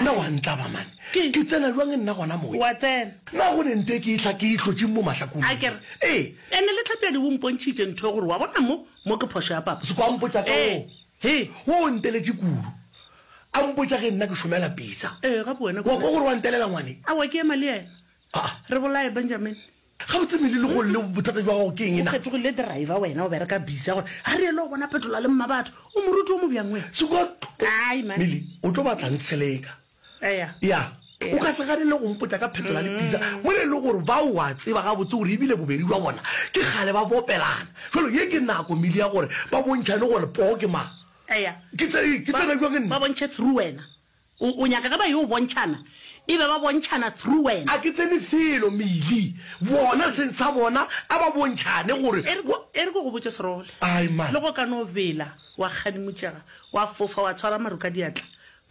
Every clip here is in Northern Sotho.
Nna wa ntlaba man. Ke tsena jwang nna gona mowe. Wa tsena. Na go ne nte ke ihla ke itlotšing mo mahlakong A ke re. Ee. Ene le Tlhapiadi o mpontšhitše ntho ya gore wa bona mo, mo ke phošo ya papa. Sekwampo tša ka wo. Ee. Wo o nteletše kudu. A mpotša ge nna ke šomela pitsa. Ee, gape wena. Wa kwa gore wa ntelela ngwane? Aowa ke ema le yena. Re bolaye Benjamin. Gabotse Milly le golle bothata jwa gago ke eng na? O fetogile driver wena o bereka busy ya gore ga re ele o bona petola le mmabatho o moruti o mobjang wena. Sekot Ai man. Milly o tlo batla ntsheleka. Eya. Ya. O ka se gane le go mpotša ka phetola le pizza mola ele gore ba o a tseba gabotse gore ebile bobedi bja bona ke kgale ba bopelana. Jwale ye ke nako Milly ya gore ba bontšhane gore poo ke mang. Eya. Ke tsene ke tsene jwang nna? Ba bontšhe through wena. O, o nyaka ge ba yo bontšhana, e be ba bontšhana through wena. A ke tsene felo, Milly. Bona se ntsha bona, a ba bontšhane gore E re, go. e re ke go botše, Srole, Aai, mma. le go ka no bela wa kgadimutšega, wa fofa, wa tshwara maru ka diatla,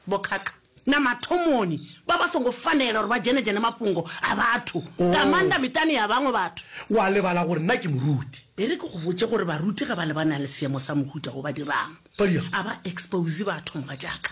bokhakha. Na mathomoni ba ba songo fanela gore ba djenedjene mafhungo a batho, Oh. nga maanḓa miṱani ya vhaṅwe vhathu? Wa lebala gore nna ke moruti. E re ke go botše gore baruti ge ba lebanang le seemo sa mohuta wo ba dirang, Ba dirang? a ba expose batho mogatšaka.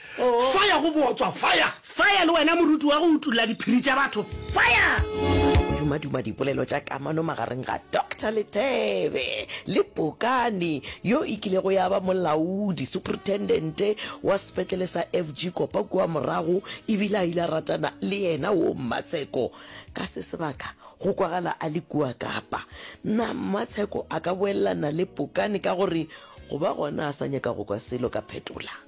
Fire go bootswa fire. Fire le wena moruti wa go utulla diphiri tša batho fire. Dumaduma dipolelo tša kamano magareng ga Doctor Lethebe le Pokani yo e kilego ya ba molaodi, superintendent, wa sepetlele sa FG Kopa kua morago e bile a ile a ratana le yena wo Mmatsheko. Ka se sebaka go kwagala a le kua Kapa. Na Mmatsheko a ka boelelana le Pokani ka gore go ba gona a sa nyaka go kwa selo ka phetola?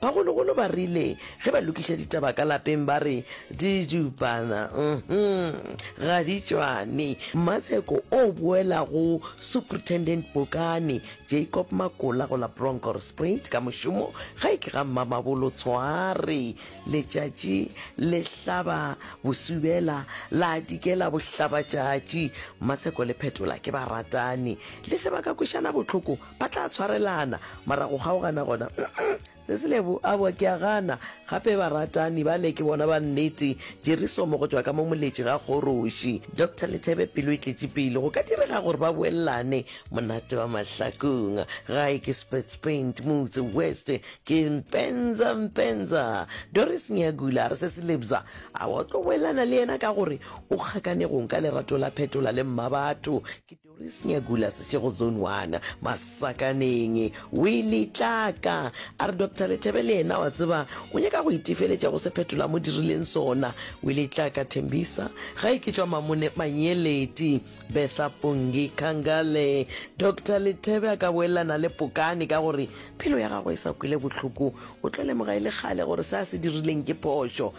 Bagologolo ba rile ge ba lokiša ditaba ka lapeng ba re didupana uhum ga di tšwane. Mmaseko o boela go Superintendent Bokane Jacob Makola go la Bronkhorstspruit ka mošomo gae ke ga Mmamabolo Tshware. Letšatši le hlaba bosubela la dikela bohlabatšatši. Mmaseko le Phetola ke baratani. Le ge ba ka kwešana bohloko, Ba tla tshwarelana, mara go kgaogana gona, mm-mm, se se lebo a boa ke a gana. Gape baratani bale ke bona ba nnete, Jerisomo go tšwa ka mo moletši ga kgoroši. Doctor Lethebe pelo e tletše pelo, go ka direga gore ba boellane, monate wa mahlakong. Gae ke Spitz Paint, Motse West ke Mpenza Mpenza. Doris Nyagula a re se se lebza a wa tlo boellana le yena ka gore o kgakanegong ka lerato la phetola le mmabatho. Doris Nyagula, Seshego Zone One, Masakaneng, o ile tlaka a re Doctor Lethebe le yena wa tseba o nyaka go itefeletša go se phetola mo dirileng sona. O ile tlaka Thembisa ga e ke tšwa Mamone Manyeleti, Betha Pongi Kangale. Doctor Lethebe a ka boelelana le Pokane ka gore phelo ya gagwe e sa kwele bohloko, o tlo lemoga e le kgale gore se a se dirileng ke phošo.